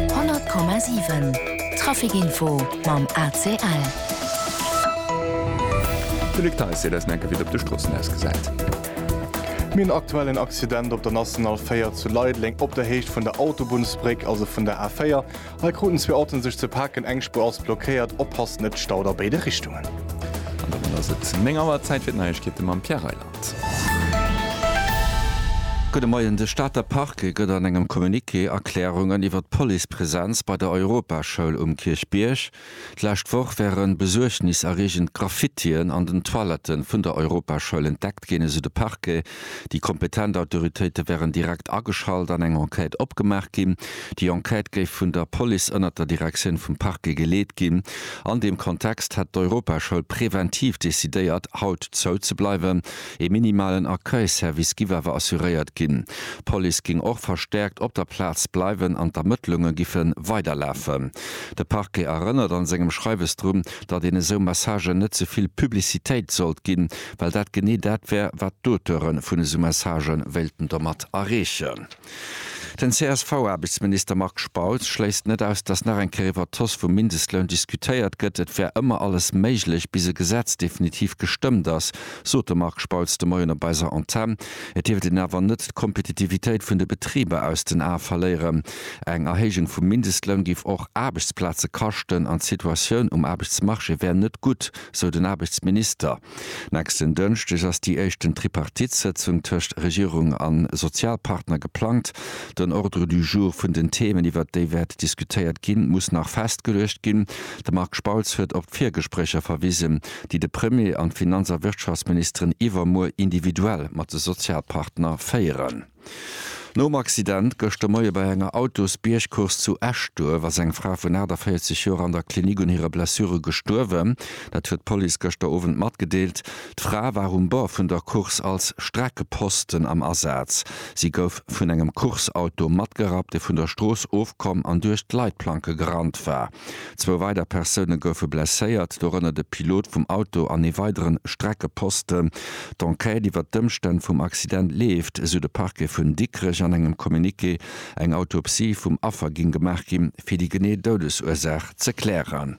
100,7 Trafic Info mam ACL. De Luc Theis seet eis enke wéi et op de Stroossen ausgesäit. Mir hunn aktuell en Accident op der National 4 zu Leideleng op der Héicht vun der Autobunnsbréck, also vun der A4. Hei kruten zwee Autoen sech ze paken, eng Spuer ass blockéiert. Oppasst, et staut a béide Richtungen. An domat ass et 9 Auer, Zäit fir d'Neiegkeete mam Pierre Reyland. Gudde Moien, De Stater Parquet gëtt an engem Communiqué Erklärungen iwwer d'Policepresenz bei der Europaschoul um Kierchbierg. D'lescht Woch wären besuergniserreegend Graffitien an den Toilette vun der Europaschoul entdeckt ginn, esou de Parquet. Déi kompetent Autoritéite wären direkt ageschalt an eng Enquête opgemaach ginn. Déi Enquête géif vun der Police ënnert der Direktioun vum Parquet geleet ginn. An deem Kontext hätt d'Europaschoul präventiv decidéiert, haut zou ze bleiwen. Ee minimalen Accueil-Service giff awer assuréiert ginn. D'Police géing och verstäerkt op der Plaz bleiwen an d'Ermëttlunge giffe weiderlafen. De Parquet erënnert an sengem Schreiwes drun, datt een esou Messagen net ze vill Publicitéit sollt ginn, well dat genee dat wär, wat d'Auteure vun esou Message wéilten domat erreechen. Den CSV-Aarbechtsminister Marc Spautz schléisst net aus, datt nach eng Kéier iwwer d'Hausse vum Mindestloun diskutéiert gëtt. Et wär ëmmer alles méiglech, bis e Gesetz definitiv gestëmmt ass, sot de Marc Spautz de Moien op eiser Antenn. Et dierft een awer net d'Kompetitivitéit vun de Betriber aus den Ae verléieren. Eng Erhéijung vum Mindestloun géif och Aarbechtsplaze kaschten an d'Situatioun um Aarbechtsmarché wär net gutt, sou den Aarbechtsminister. Nächsten Dënschdeg ass déi éischten Tripartite-Sëtzung tëscht Regierung a Sozialpartner geplangt. Den Ordre du jour vun den Themen, iwwert déi wäert diskutéiert ginn, muss nach festgeluecht ginn. De Marc Spautz huet op d'Virgespréicher verwisen, déi de Premier an d'Finanz a Wirtschaftsministeren iwwermuer individuell mat de Sozialpartner féieren. Nom Accident gëschter Moie bei enger Autosbiergcourse zu Eschduerf ass eng Fra vun 48 Joer an der Klinik un hire Blessure gestuerwen. Dat huet d'Police gëschter Owend matgedeelt. D'Fra war um Bord vun der Course als Streckeposten am Asaz. Si gouf vun engem Course-Auto matgerappt, dee vun der Strooss ofkomm an duerch d'Leitplanke gerannt war. Zwou weider Persoune goufe blesséiert, dorënner de Pilot vum Auto an ee weidere Streckeposten. D'Enquête iwwer d'Ëmstänn vum Accident leeft, esou de Parquet vun Dikrech an engem Communiqué. Eng Autopsie vum Affer géing gemaach ginn, fir déi genee Doudesursaach ze klären.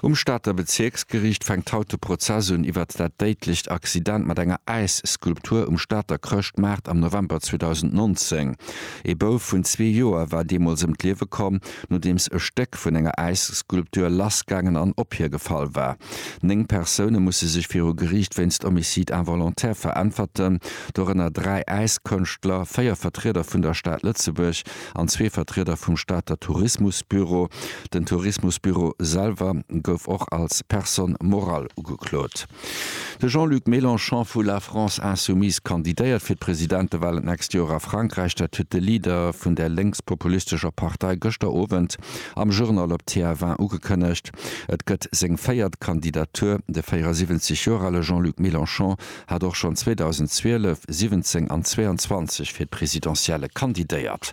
Um Stater Bezierksgeriicht fänkt haut de Prozess un iwwer dat déidlecht Accident mat enger Äisskulptur um Stater Chrëschtmaart am November 2019. Ee Bouf vun zwee Joer war deemools ëm d'Liewe komm. Nodeems e Stéck vun enger Äisskulptur lassgaangen an op hie gefall war. Néng Persoune musse sech viru Geriicht wéinst Homicide involontaire veräntwerten, dorënner dräi Äiskënschtler, véier Vertrieder vun der Stad Lëtzebuerg an zwee Vertrieder vum Stater Tourismusbüro. Den Tourismusbüro selwer gouf och als Personne morale ugeklot. De Jean-Luc Mélenchon vu La France Insoumise kandidéiert fir d'Presidentewalen d'nächst Joer a Frankräich. Dat huet de Leader vun der lénkspopulistescher Partei gëschter Owend am Journal op TF1 ugekënnegt. Et gëtt seng véiert Kandidatur. De 74 Joer ale Jean-Luc Mélenchon hat och schonn 2012, 17 an 22 fir d'Presidentielle kandidéiert.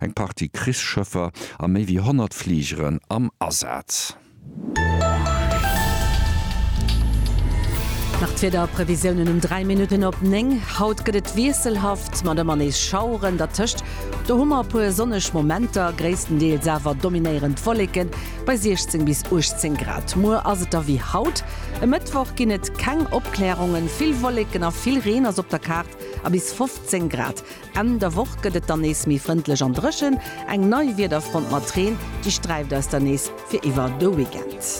Eng Partie Krichsschëffer a méi wéi 100 Fligeren am Asaz. Nach d'Wiederprevisiounen um 3 Minutten op 9. Haut gëtt et wiesselhaft mat ëmmer nees Schaueren, dertëscht do hu mer e puer sonneg Momenter, gréisstendeels awer dominéierend Wolleke bei 16 bis 18 Grad. Muer ass et da wéi haut, e Mëttwoch ginn et keng Opklärungen, vill Wolleken a vill Reen ass op der Kaart a bis 15 Grad. Enn der Woch gëtt et dann nees méi frëndlech an dréchen. Eng nei Wiederfront mat Reen, déi sträift eis dann nees fir iwwer de Weekend.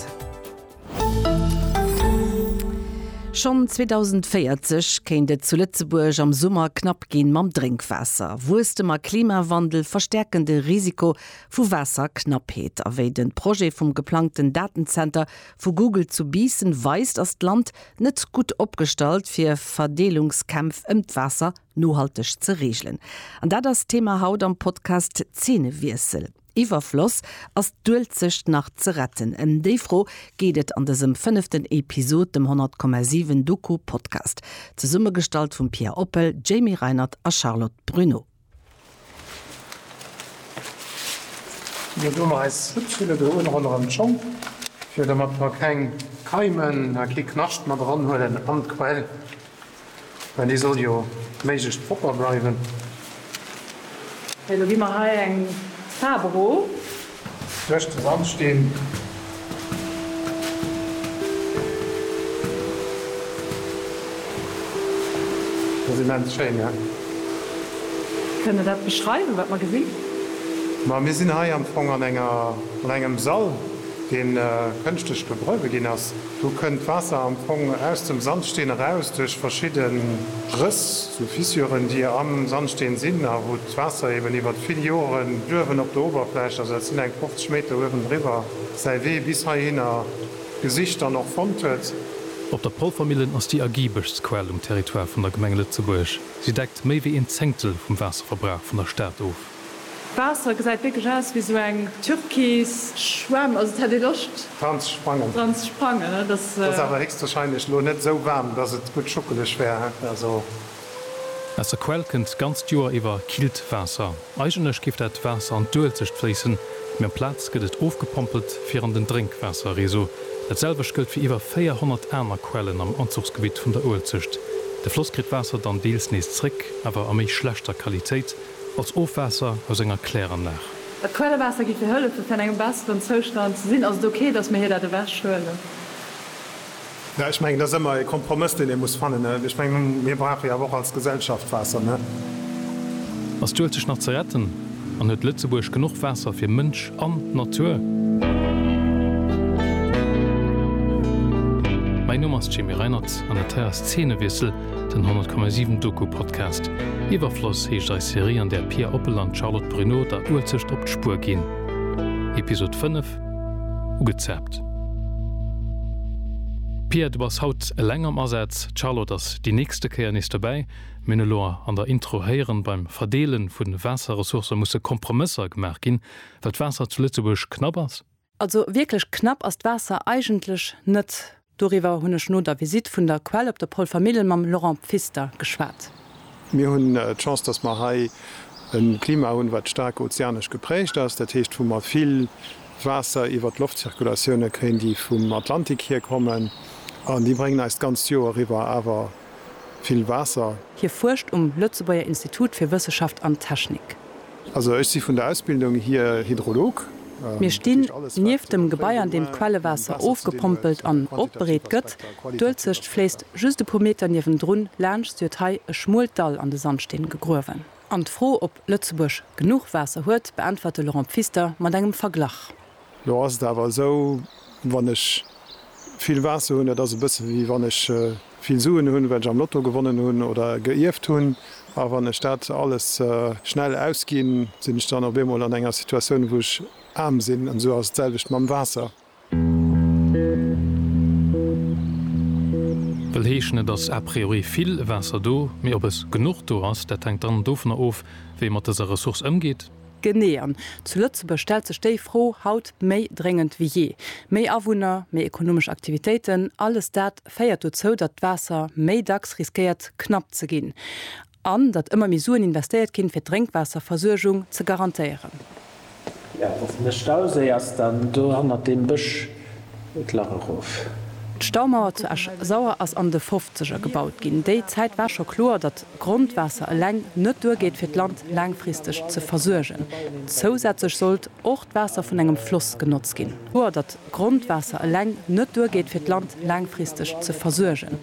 Schonn 2040 kéint et zu Lëtzebuerg am Summer knapp gi mam Drénkwaasser. Wuesstem a Klimawandel verstäerken de Risiko vu Waasserknappheet. A wéi de Projet vum geplangten Datenzenter vu Google zu Biissen weist, ass d'Land net gutt opgestallt fir Verdeelungskämpf ëm d'Waasser nohalteg ze reegelen. An dat ass d'Thema haut am Podcast Zeenewiessel. Iwwerfloss, Ass d'Uelzecht nach ze retten? Ëm déi Fro geet et an dësem fënneften Episod, dem 100,7 Doku-Podcast. Zesummegestallt vum Pia Oppel, Jamie Reinert a Charlotte Bruneau. Mir doen och eis Schutzhülle do un ronderëm d'Schong, fir domat mer keng Keimen a kee Knascht mat eran huelen an d'Quell, well déi soll jo méiglechst propper bleiwen. Elo gi mer hei eng Faarf erof. Duerch de Sandsteen. Dat ass immens schéin, ne? Kënnt Der dat beschreiwen, wat mer gesinn? Ma mir sinn hei am Fong an enger, an engem Sall, dee kënschtlech begruewe ginn ass. Do kënnt d'Waasser am Fong aus dem Sandsteen eraus duerch verschidde Rëss, sou Fissuren, déi am Sandsteen sinn a wou D'Waasser eben iwwert vill Joren d'Uewen op der Uewerfläch, also dat sinn eng 50 Meter uewendriwwer, säi Wee bis heihinner gesicht an och fonnt huet. Op der Polvermillen ass déi ergiebeschst Quell um Territoire vun der Gemeng Lëtzebuerg. Si deckt méi wéi een Zéngtel vum Waasserverbrauch vun der Stad of. D'Waasser gesäit wierklech aus wéi sou eng türkis Schwämm, also et hätt ee Loscht dran ze sprangen. Dran ze sprangen, ne? Dass. Ass awer héchstwahrscheinlech elo net esou waarm, dass et gutt schuckeleg wär, he? Also. Aus der Quell kënnt d'ganzt Joer iwwer killt Waasser. Eigentlech géif dat Waasser an d'Uelzecht fléissen, mee am Plaz gëtt et ofgepompelt fir an den Drénkwaasserreseau. Dat selwecht gëllt fir iwwer 400 aner Quellen am Anzuchsgebitt vun der Uelzecht. De Floss kritt d'Waasser dann deels nees zréck, awer a méi schlechter Qualitéit, als Ofwaasser aus enger Kläranlag. Dat Quellewaasser gi fir hëllefen, fir an engem besseren Zoustand ze sinn. Ass et ok, datt mir hir dat ewechhuelen? Jo, ech mengen, et ass ëmmer e Kompromëss, deen ee muss fannen. Ech mengen, mir brauche jo awer och als Gesellschaft Waasser, ne? Ass d'Uelz sech nach ze retten an huet Lëtzebuerg genuch Waasser fir Mënsch an Natur? Mäin Numm ass Jamie Reinert an dat hei ass Zeenewiessel, den 100,7 Doku-Podcast. Iwwerfloss heescht eis Serie, an där Pia Oppel an d'Charlotte Bruneau der Uelzecht op d'Spuer ginn. Episod 5, Ugezaapt. Pia, du bass haut eleng am Asaz, d'Charlotte ass déi nächste Kéier nees dobäi. Mir hunn elo an der Intro héieren, beim Verdeele vu Waasserressourcë musse Kompromësser gemaach ginn, well d'Waasser zu Lëtzebuerg knapp ass. Also wierklech knapp ass d'Waasser eigentlech net. Doriwwer hunn ech no der Visitt vun der Quell op der Polvermillen mam Laurent Pfister geschwat. Mir hunn d'Chance, dass mer hei e Klima hunn, wat staark ozeanesch geprägt ass. Dat heescht, wou mer vill Waasser iwwert d'Loftzirkulatioune kréien, déi vum Atlantik hierkommen. An déi bréngen eis d'ganzt Joer eriwwer awer vill Waasser. Hie fuerscht um Lëtzebuerger Institut fir Wësseschaft an Technik. Also ech si vun der Ausbildung hier Hydrolog. Mir stinn nieft dem Gebai an deem d'Quellewaasser ofgepompelt an opbereet gëtt. D'Uelzecht fléisst just e puer Meter niewendrun laanscht, si huet hei e schmuelt Dall an de Sandsteen gegruewen. An d'Fro, ob Lëtzebuerg genuch Waasser huet, beäntwert de Laurent Pfister mat engem Verglach. Lo ass et awer esou, wann ech vill Waasser hunn, dat ass e bësse wéi wann ech vill Suen hunn, well ech am Lotto gewonnen hunn oder geierft hunn. A wann ech dat alles schnell ausginn, sinn ech dann op eemol an enger Situatioun, wou ech aarm sinn. An esou ass et d'selwecht mam Waasser. Wëll heeschen, et ass a priori vill Waasser do, mee ob es genuch do ass, dat hänkt dann dovunner of, wéi ee mat dëser Ressource ëmgeet. Genee, an zu Lëtzebuerg stellt sech déi Fro haut méi dréngend wéi jee. Méi Awunner, méi ekonomesch Aktivitéiten, alles dat féiert dozou, datt d'Waasser méi dacks riskéiert knapp ze ginn an datt ëmmer méi Suen investéiert ginn, fir d'Drénkwaasserversuergung ze garantéieren. De Stauséi ass dann do hannert deem Bësch d'Lach erof. D'Staumauer zu Esch-Sauer ass an de Fofzeger gebaut ginn. Déi Zäit war scho kloer, datt Grondwaasser eleng net duergeet fir d'Land laangfristeg ze versuergen. Zousätzlech sollt och d'Waasser vun engem Floss genotzt ginn. Kloer, datt Grondwaasser eleng net duergeet fir d'Land laangfristeg ze versuergen.